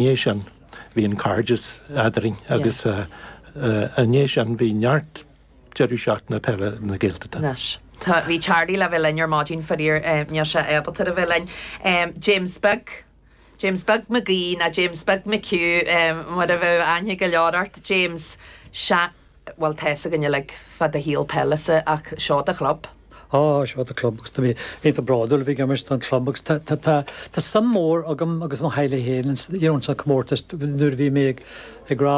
dhiaidh sin, bhí an cairdeas eadrainn agus ina dhiaidh sin, bhí neart deireadh seachtaine péile na Gaeltachta. Anois, tá, bhí Charlie le bheith linn ar maidin, faraor, níl sé ábalta a bheith linn. James Beag, James Beag McGee, ná James Beag McHugh, mar ab fhearr aithne go leor ort, James, sea. bhfuil, tá a fhios againn uilig fa do shaol peile, is é ach seo do chlub. Á, seo do chlub agus tá mé iontach bródúil a bheith ag imirt don chlub agus tá, tá, tá, tá suim mór agam agus mo theaghlaigh féin ins, you know, ins na comórtais nuair a bhí mé ag, ag rá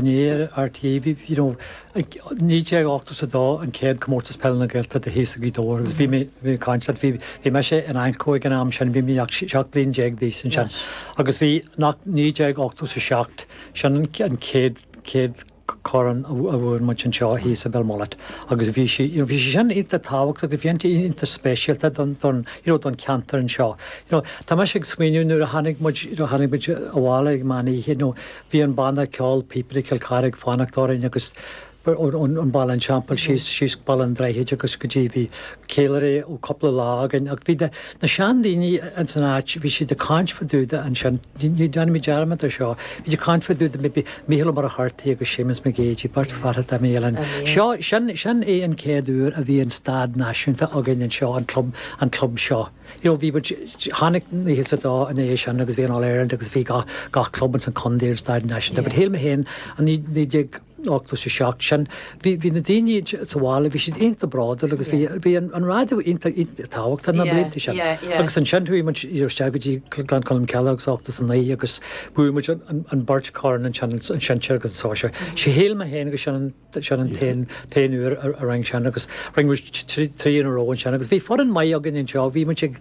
inné ar RTÉ bhí, you know, ag, 1982 an céad comórtas peile na Gaeltachta dom thíos i Gaoth Dobhair agus bhí mé, bhí mé ag caint leat, bhí, bhí mise in AnCO ag an am sin, bhí mé ach 17 bliain d'aois ansin agus bhí, nach, 1987, sin an céad, chéad corn a bhuaigh muid anseo thíos i Belmullet agus bhí sí, you know, bhí sé sin iontach tábhachtach agus bhí iontach iontach speisialta don, don, you know, don cheantar anseo. You know, tá mise ag smaoineamh nuair a tháinig muid, you know, tháinig muid abhaile ag meán oíche, you know, bhí an banna ceoil Píobairí Chill Chartha ag fanacht orainn agus ón, ón, ón Bhaile an Teampaill síos, síos go Baile an Droichid agus go dtí, bhí ceiliúradh cúpla lá againn ach bhí na, na seandaoine ins an áit, bhí siad ag caint fá dtaobh de sin. Ní dhéanfaimid dearmad ar seo. Beidh daoine ag caint fá dtaobh de. Bhí Mícheál Ó Muircheartaigh agus Séamus Mac Géidigh, beirt fhathach, dá mba áil leat. Seo, sin, sin é an chéad uair a bhí an stáid náisiúnta againn anseo, an club, an club seo. You know, bhí muid, tháinig nócha a dó ina dhiaidh sin agus bhí an All Ireland agus bhí gach, gach club ins an chontae ar an stáid náisiúnta but shíl mé féin i naoi, naoi déag, ochtó a 7 sin. Bhí na daoine sa bhaile, bhí siad iontach bródúil agus bhí an raidió iontach tábhachtach na blianta sin. Agus ansin chuaigh muid isteach go dtí Gleann Cholm Cille in ochtó a 9 agus bhuaigh muid an beirt chorn ansin, an sinsear agus an sóisear. Shíl mé féin gur sin an t-aon uair a rinneadh sin agus rinne muid trí in a row ansin agus bhí foireann maith againn anseo, bhí muid ag.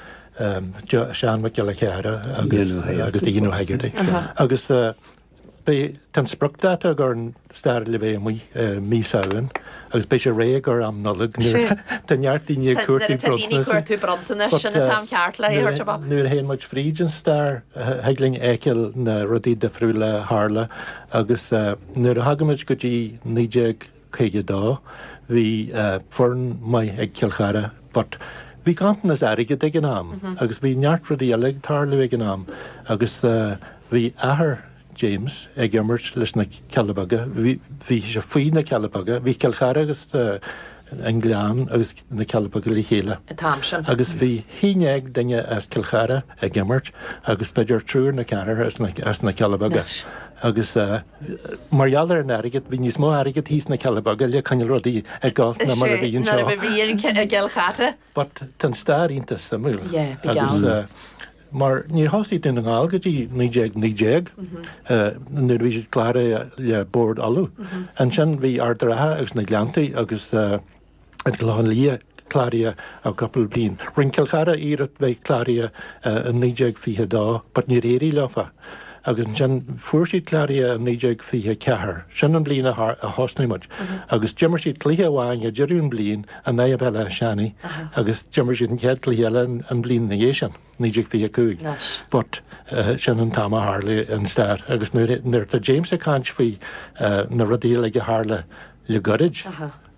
Seán Mac Giolla Chearra agus Dinny Hegarty. Agus tá an spriocdáta ag an Stair le bheith amuigh mí Samhain agus beidh sé réidh i gcomhair am Nollag Tá neart daoine ag cuartú bronntanais sin atá ceart le dhéanamh dom. Nuair a théann muid fríd an stair thig linn fheiceáil na rudaí difriúla a tharla agus nuair a thagaimid go dtí naoi déag 52. Bhí foireann maith ag Cill Chartha but bhí ganntanas airgid ag an am agus bhí neart rudaí eile ag tarlú ag an am agus bhí athair James ag imirt leis na Cealla Beaga, bhí sé faoi na Cealla Beaga, bhí Cill Chartha agus An Gleann agus. na Cealla Beaga le chéile. an t-am sin. Agus bhí haon déag duine as Cill Chartha ag imirt agus b'fhéidir triúr nó ceathrar as na Cealla Beaga. Agus mar gheall ar an airgead, bhí níos mó airgead thíos sna Cealla Beaga le coinneáil rudaí ag gabháil ná mar a bhí anseo. Nuair a bhí riamh i gCill Chartha. But tá an stair iontach suimiúil. Yeah, bí geall. Mar níor thosaigh Dún na nGall go dtí 1919 nuair a bhí siad cláraithe le Bord Uladh. Ansin bhí Ard Ratha agus na Gleanntaí agus an Clochán Liath cláraithe i gcúpla bliain. Rinn Cill Chartha iarracht bheith cláraithe i 1922 but níor éirigh leofa agus ansin fuair siad cláraithe i 1924, sin an bhliain a thosaigh muid agus d'imir siad cluiche amháin ag deireadh an bhliain in aghaidh Bhéal Átha Seanaigh agus d'imir siad an chéad chluiche eile an bhliain ina dhiaidh sin, 1925, but sin an t-am a tharla an stair agus nuair atá James ag caint faoi na rudaí uilig a tharla le goirid,